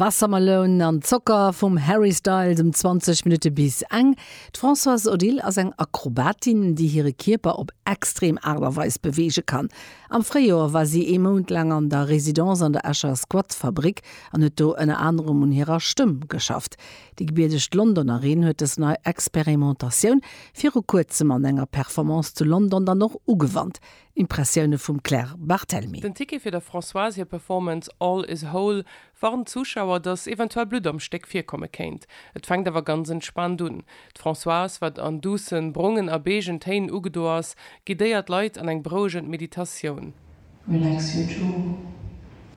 Wassermelon an Zocker vum Harry Styles um 20 Minutte bis eng. D'Françoise Odile ass eng Akrobatin, déi hire Kierper op extrem Aart a Weis beweege kann. Am Fréijoer war si ee Mount laang an der Residence an der Escher Squatfabrik an huet do ënner anerem un hirer Stëmm geschafft. Déi gebiedegt Londonerin huet dës nei Experimentatioun viru kuerzem an enger Performance zu London dann och ugewannt. Impressioune vum Claire Barthelmy. Den Ticket fir der Françoise hir Performance All is whole warnt d'Zuschauer, datt eventuell Blutt am Stéck virkomme kéint. Et fänkt awer ganz entspaant un. D'Françoise, wat an duussen, brongen a beegen Téin ugedo ass, guidéiert d'Leit an eng berouegend Meditatioun. Relax your jaw.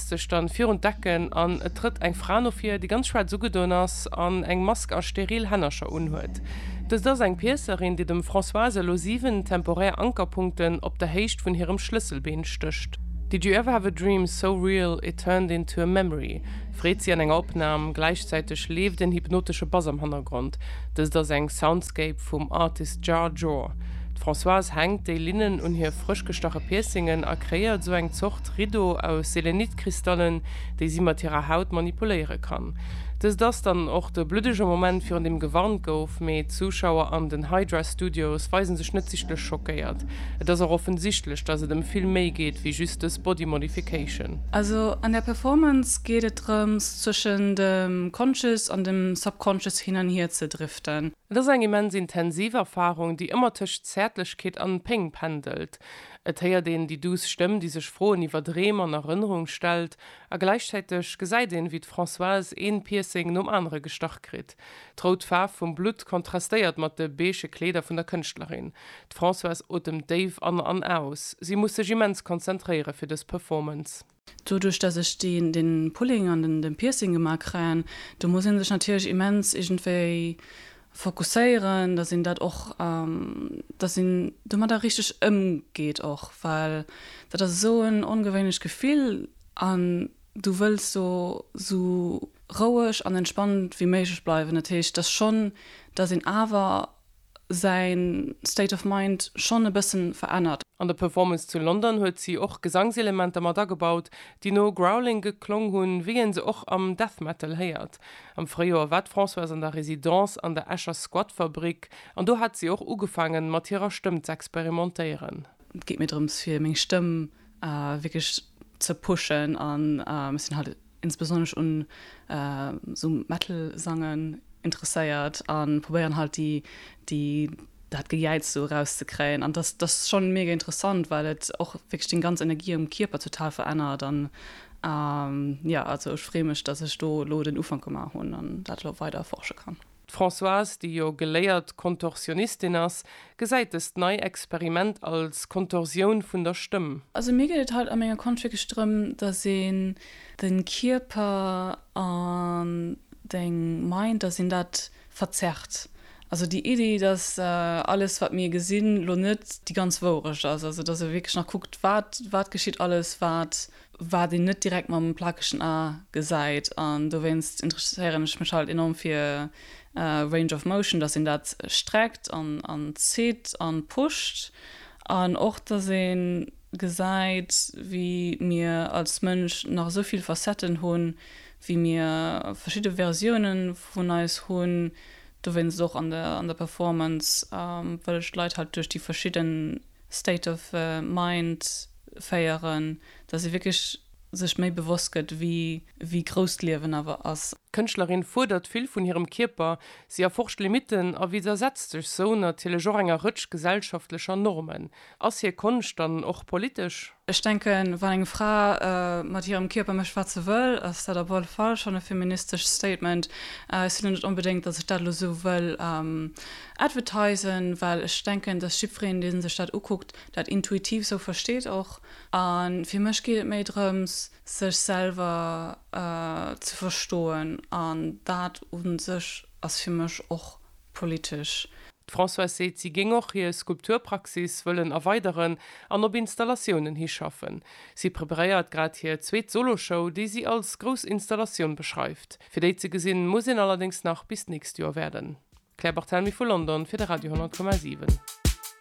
sech dann virun d'Decken an et trëtt eng Fra no vir, déi ganz schwaarz ugedoen ass an eng Mask a steril Hännercher unhuet. Dëst ass eng Piëcerin, déi dem Françoise elo 7 temporär Ankerpunkten op der Héicht vun hirem Schlësselbeen stécht. Did you ever have a dream so real it turned into a memory? freet si an enger Opnam. Gläichzäiteg leeft en hypnotesche Bass am Hannergrond. Dëst ass eng Soundscape vum Artist Jar Jor. D'Françoise hänkt déi Linnen un hir frëschgestache Piercingen a kreéiert esou eng Zort D'Rido aus Selenit-Kristallen, déi si mat hirer Haut manipuléiere kann. Dëst ass dann och de bluddege Moment virun deem gewarnt gouf, mee d'Zuschauer an den Hydra Studios weise sech net sichtlech schockéiert. Et ass och offensichtlech, dass et ëm vill méi geet wéi just dës Body Modification. Also an der Performance geet et drëms zwëschen dem Conscious an dem Subconscious hin an hier ze driften. Et ass eng immens intensiv Erfarung, déi ëmmer tëscht Zäertlechkeet an Péng pendelt. Et héiert een déi duuss Stëmm, déi sech Froen iwwer Dreem an Erënnerung stellt, a gläichzäiteg gesäit een, wéi d'Françoise een Piercing nom anere gestach kritt. D'rout Faarf vum Blutt kontrastéiert mat de beige Kleeder vun der Kënschtlerin. D'Françoise otemt déif an an aus. Si muss sech immens konzentréiere fir dës Performance. Doduerch dass ech deen den Pulling an den den Piercing gemaa kréien, do muss een sech natierlech immens iergendwéi fokusséieren, dass een dat och, dass een domadder richteg ëmgeet och, well dat ass esou en ongewéinlecht Gefill an du wëlls do esou roueg an entspannt wéi méiglech bleiwen. Dat heescht, dass schonn, dass een awer. säin State of Mind schonn e bëssen verännert. An der Performance zu London huet si och Gesangselementer mat agebaut, déi no Growling geklong hunn, wéi een se och am Death Metal héiert. Am Fréijoer war d'Françoise an der Residence an der Escher Squatfabrik an do hat si och ugefaangen, mat hirer Stëmm z'experimentéieren. Et geet mir drëms, fir meng Stëmm wierklech ze pushen an ech sinn halt insbesonnesch un esou Metal Sangen interesséiert an probéieren halt déi déi dat Gejäiz sou eraus ze kréien an dass dass schon mega interessant well et och wierklech deng ganz Energie am Kierper total verännert an jo also ech free mech dass ech do elo den Ufank gemaach hunn an dat elo weider erforsche kann. D'Françoise, déi jo geléiert Kontorsionistin ass, gesäit dëst nei Experiment als Kontorsioun vun der Stëmm. Also mir geet et haut a menger Konscht wierklech drëm, dass een de Kierper an deng Mind, dass een dat verzerrt. Also déi Iddi, dass alles wat mir gesinn, lo net déi ganz Wourecht ass. Also dass e wierklech nach kuckt, wat, wat geschitt alles, wat wat een net direkt mam plakegen A gesäit an dowéinst interesséieren ech mech halt enorm fir Range of Motion, dass een dat streckt an zitt an pusht an och dass een gesäit wéi mir als Mënsch nach esou vill Facetten hunn, wéi mir verschidde Versiounen vun eis hunn. Dowéinst och an der Performance wëll ech d'Leit halt duerch déi verschidden. State of Mind féieren, dass ee wierklech sech méi bewosst gëtt, wéi grouss d'Liewen awer ass. D'Kënschtlerin fuerdert vill vun hirem Kierper, si erforscht Limitten a widdersetzt sech sou natierlech och enger Rëtsch gesellschaftlecher Normen. Ass hir Konscht dann och politesch? Ech denken, wann eng Fra mat hirem Kierper mécht, wat se wëll, ass dat op alle Fall schonn e feministescht Statement. Et si lo net onbedéngt, datt ech dat elo esou wëll advertisen, well ech denken, datt jiddwereen, dee sech dat ukuckt, dat intuitiv esou versteet och. A fir mech geet et méi drëms, sech selwer ze verstoen an dat u sech ass fir mech och politesch. D'Françoise seet, si géing och hir Skulpturpraxis wëllen erweideren an op Installatiounen hischaffen. Si preparéiert grad hir zweet Solo-Show, déi si als grouss Installatioun beschreift. Fir déi ze gesinn, muss een allerdéngs nach bis d'nächst Joer waarden. Claire Barthelmy vu London fir de Radio 10,7.